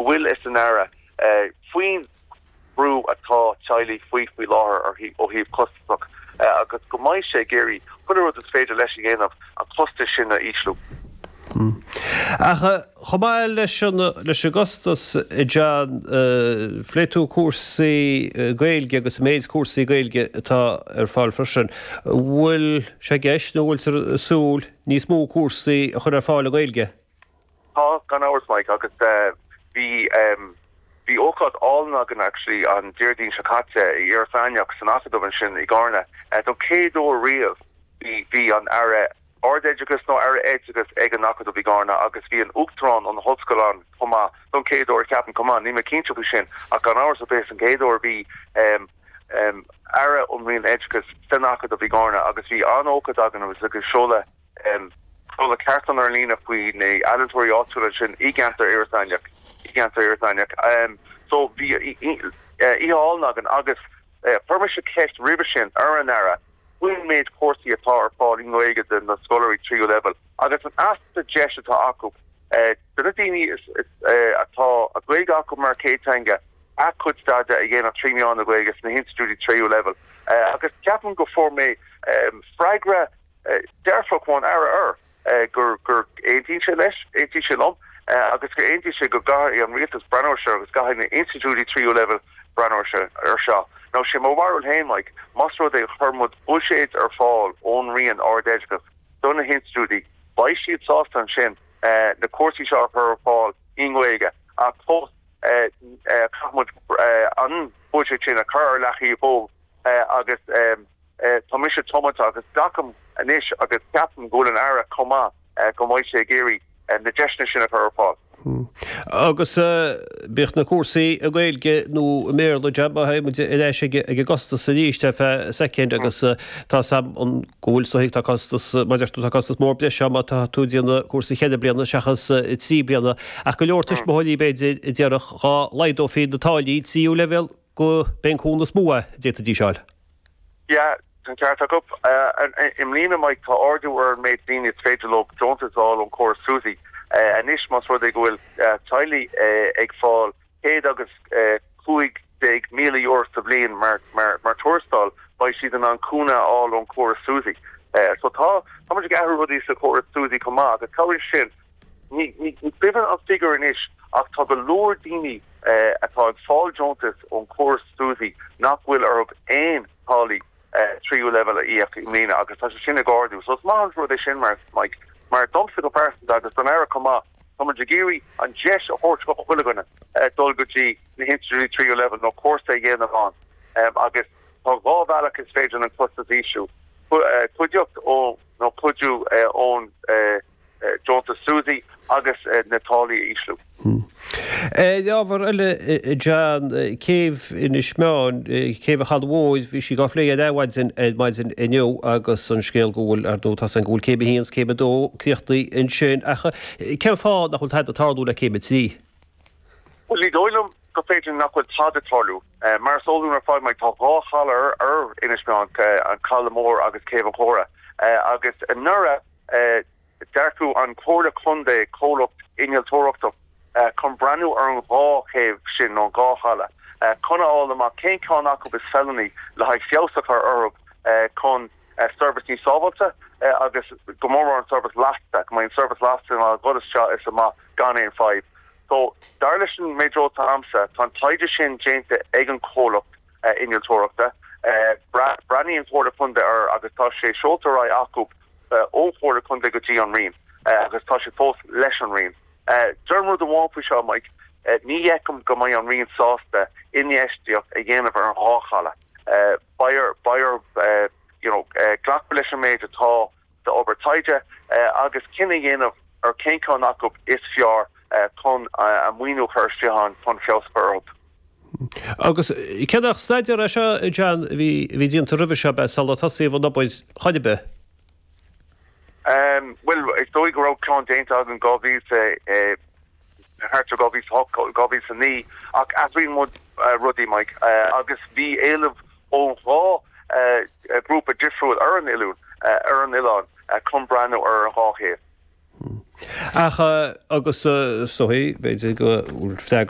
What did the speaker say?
bhfuil fhios ag an Aire faoin bhrú atá teaghlaigh faoi faoi láthair ó thaobh costasach agus go mbeidh sé ag iarraidh chuile rud is féidir leis a dhéanamh an costas sin a ísliú. Ach chomh maith leis an gcostas, John, phléigh tú cúrsaí Gaeilge agus an méid cúrsaí Gaeilge atá ar fáil freisin. Bhfuil sé i gceist nó bhfuiltear ag súil níos mó cúrsaí a chur ar fáil i nGaeilge? Tá, gan amhras, Mike, agus bhí, em, bhí ócáid álainn againn actually an Déardaoin seo caite i Iorras Aithneach san Acadamh ansin i gCarna, don chéad uair riamh bhí, bhí an Aire Ardoideachais nó Aire Oideachais ag an Acadamh i gCarna agus bhí an Uachtarán ón ollscoil ann chomh maith, don chéad uair ceapaim, chomh maith, níl mé cinnte faoi sin ach gan amhras ó b'é an chéad uair bhí, em, em, Aire ón Roinn Oideachais san Acadamh i gCarna agus bhí an-ócáid againn agus, agus seoladh, seoladh cartlann ar líne faoi na ealaíontóirí áitiúla ansin i gceantar Iorras Aithneach, i gceantar Iorras Aithneach. So, bhí oíche álainn againn agus chuir mise ceist roimhe sin ar an Aire faoin méid cúrsaí atá ar fáil i nGaeilge do na scoláirí tríú leibhéal agus an easpa deis atá acu do na daoine atá Gaeilge acu mar chéadteanga a cuid staidéar a dhéanamh trí mheán na Gaeilge sna hinstitiúidí tríú leibhéal agus ceapaim go fuair mé freagra dearfach ón Aire, gur, gur, aontaíonn sé leis, aontaíonn sé liom, agus gur aontaíonn sé go gcaithfidh an rialtas breathnú ar seo agus caithfidh na institiúidí tríú leibhéal breathnú ar seo, ar seo. Now, sé mo bharúil féin, Mike, más rud é chuir muid buiséad ar fáil ón Roinn Ardoideachas do na hinstitiúidí, beidh siad sásta ansin na cúrsaí seo a chur ar fáil i nGaeilge ach fós caithfidh muid an buiséad sin a chur ar leataobh agus. Tá mise tiomanta agus glacaim anois agus ceapaim go bhfuil an Aire chomh maith go mbeidh sé ag iarraidh na deiseanna sin a chur ar fáil. Agus bíodh na cúrsaí i nGaeilge nó i mBéarla, John, má théann muid ar ais ag an gcostas arís ar feadh soicind agus tá fhios agam go bhfuil, so, tá costas, mar a deir tú, tá costas mór breise ann má tá tú ag déanamh cúrsa cheithre bliana seachas trí bliana ach go leor tuismitheoirí b'fhéidir a déarfadh dhá laghdófaí na táillí tríú leibhéal go mb'in an cúnamh is mó a d'fhéadfaidís a fháil. Yeah, tá an ceart agat. I mbliana, Mike, tá ardú ar an méid daoine is féidir leo deontais a fháil ón chóras SUSI. Anois, más rud é go bhfuil teaghlaigh ag fáil céad agus cúig déag míle euro sa bhliain mar tuarastal, beidh siad in ann cúnamh a fháil ón chóras SUSI. So, tá muid ag athrú rudaí sa chóras SUSI chomh maith agus cabhraíonn sin. Ní cuimhin an figiúr anois ach tá go leor daoine atá ag fáil deontais ón chóras SUSI nach bhfuil orthu aon táillí tríú leibhéal a íoc i mbliana agus tá sé sin ag ardú. So is maith an rud é sin mar Mike, mar domsa go pearsanta agus don Aire chomh maith, tá muid ag iarraidh an deis a thabhairt do chuile dhuine dul go dtí na hinstitiúidí tríú leibhéal nó cúrsa a dhéanamh ann agus tá dhá bhealach is féidir an costas a ísliú, cuidíocht nó cuidiú ón deontas SUSI agus na táillí a ísliú. Ar ábhar eile, John, céibh Inis Meáin, céibh an Chalaidh Mhóir, bhí sí á plé ar Adhmhaidin ar maidin inniu agus an scéal go bhfuil, ar ndóigh, tá a fhios againn, go bhfuil céim a haon 's céim a dó críochnaithe ansin ach cén fáth nach bhfuil tada ag tarlú le céim a trí? Bhuel, ní dóigh liom gur féidir nach bhfuil tada ag tarlú. Mar is eol dúinn ar fad, tá dhá chaladh ar Inis Meáin, Caladh Mór agus Céibh an Chóra agus anuraidh, D'earcaigh an Chomhairle Contae comhlacht innealtóireachta chun breathnú ar an dhá chéibh sin, nó an dhá chaladh, chun a fháil amach cén ceann acu is feiliúnaí le haghaidh feabhas a chur orthu chun seirbhís níos sábháilte agus go mór mór an seirbhís lasta, go mbeidh an seirbhís lasta in ann dhul isteach is amach gan aon fadhb. So dar leis an méid eolais atá agamsa, tá an taighde sin déanta ag an chomhlacht. innealtóireachta. Bhreathnaigh an Chomhairle Contae air agus tá sé seolta ar aghaidh acu ón Chomhairle Contae go dtí an Roinn agus tá sé fós leis an Roinn. Deirim rud amháin faoi seo, Mike, ní fheicim go mbeidh an Roinn sásta infheistíocht a dhéanamh ar an dhá chaladh. Beidh orthu glacadh leis an méid atá. d'obair taighde agus cinneadh a dhéanamh ar cén ceann acu is fearr chun a maoiniú a chur isteach ann chun feabhas a chur orthu. Agus cé nach staidéar é seo, a John, a bhí déanta roimhe seo, beidh sular tosaíodh an obair ar chor ar bith? Bhuel, is dóigh go raibh ceann déanta againn dhá mhí thart ar 2008, 2009, ach athraíonn muid rudaí, Maidhc, agus bhí éileamh ón dhá ghrúpa difriúil ar an oiliúint, ar an oileán, chun breathnú ar an dhá chéibh. Ach, agus so, b'fhéidir go bhfuil freagra.